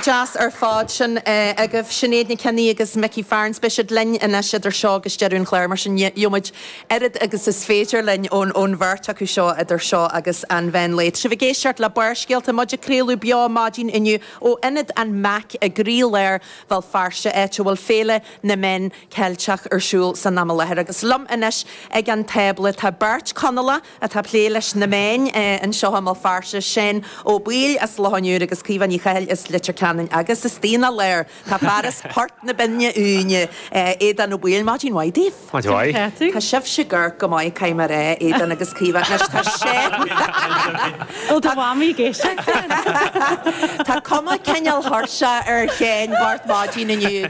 Deas ar fad. Sin agaibh Sinéad McKenna agus Mickey Farrins. Beidh siad linn anois idir seo agus deireadh an chláir, mar sin gheobhaimid oiread agus is féidir linn ón bheirt acu seo idir seo agus an mheán lae. Tá sibh ag éisteacht le Barrscéalta, muid ag craoladh beo maidin inniu ó Ionad an mac i gcroílár Bhéal Feirste, áit a bhfuil Féile na Meán Ceilteach ar siúl san am i láthair. Agus liom anois ag an tábla tá beirt Conallach, atá ag plé leis na meáin anseo i mBéal Feirste, Séan Ó Baoill as Loch an Iúir agus Caoimhe Ní Chathail as Leitir Ceanainn agus is dár ndóigh tá fear as Port na Binne Uaine, Aodán Ó Baoill. Maidin mhaith daoibh. Maidin mhaith. Tá sibhse ag amharc go maith, caithfidh mé a rá, Aodán agus Caoimhe. Anois tá Séan. Ó, tá Mamaí ag éisteacht. Tá cuma cineál thuirseach ar Shéan, Máirt maidin inniu.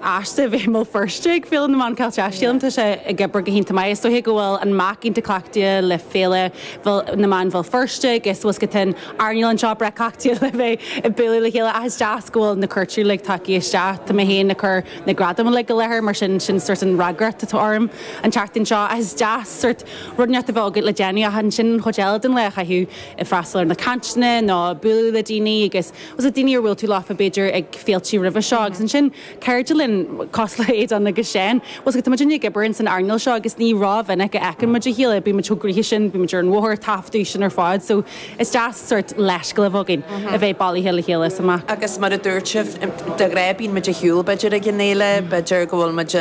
as bheith i mBéal Feirste ag Féile na Meán Ceilteach. Sílim tá sé ag obair go hiontach maith. Is dóiche go bhfuil an mac iontach cleachtaithe le féilte na Meán Bhéal Feirste agus bhfuil scaifte áirithe againn anseo, breá cleachtaithe le bheith ag bualadh le chéile ach is deas go bhfuil na cuairteoirí uilig tagtha isteach. Tá mé féin ag cur na gradaim uilig i láthair mar sin sin sort an fhreagracht atá orm an tseachtain seo ach is deas sort neart a bheith agat le déanamh ach ansin an chuid eile den lá a chaitheamh ag freastal ar na cainteanna nó ag bualadh le daoine agus Agus daoine ar bhuail tú leofa, b'fhéidir, ag féiltí roimhe seo, agus ansin, cairde linn, cosúil le Aodán agus Séan. Sea, tá muid uilig ag obair ins an earnáil seo, agus ní ró-mhinic a fheiceann muid a chéile, bíonn muid chomh gnoitheach sin, bíonn muid ar an bhóthar, ag taifeadadh, sin ar fad, so is deas sórt leithscéal a bheith againn a bheith bailithe le chéile is amach. Agus mar a dúirt mé, de ghnáth, bíonn muid ar shiúl, b'fhéidir, ag an fhéile, b'fhéidir go bhfuil muid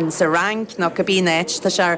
insa Fhrainc, nó cibé áit, tá sé.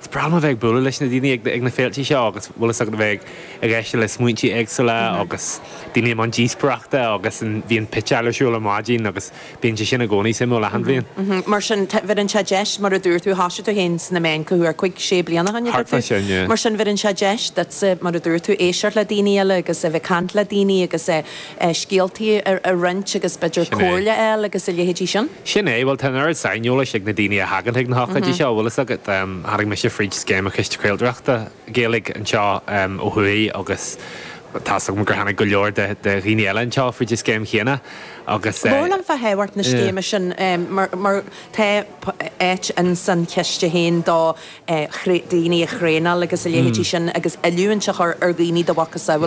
Is breá liom a bheith ag bualadh leis na daoine ag na féilte seo agus bhfuil fhios agat a bheith ag éisteacht le smaointí éagsúla agus daoine i mbun díospóireachta agus bíonn pitch ar siúl ar maidin agus bíonn sé sin i gcónaí suimiúil achan bhliain. Mar sin, bheireann seo deis, mar a dúirt tú, thoisigh tú féin sna meáin cá huair cúig sé bliana ó shin, a dúirt tú? Thart fá sin, yeah. Mar sin, bheireann seo deis duitse, mar a dúirt tú, éisteacht le daoine eile agus bheith ag caint le daoine agus. scéaltaí a roinnt agus b'fhéidir Sin é. comhairle a fháil agus a leithéidí sin. Sin é. Bhuel, tá an oiread saineolais ag na daoine a thagann chuig na hocáidí seo, bhfuil fhios agat. Tháinig mise fríd scéim an Chiste Craoltóireachta Gaeilge anseo ó thuaidh agus tá fhios agam gur tháinig go leor de dhaoine eile anseo fríd an scéim chéanna agus. Labhair liom fá thábhacht na scéime sin mar tá áit ins an Chiste féin do dhaoine a thraenáil agus a leithéidí sin agus oiliúint a chur ar dhaoine do mhacasamhail.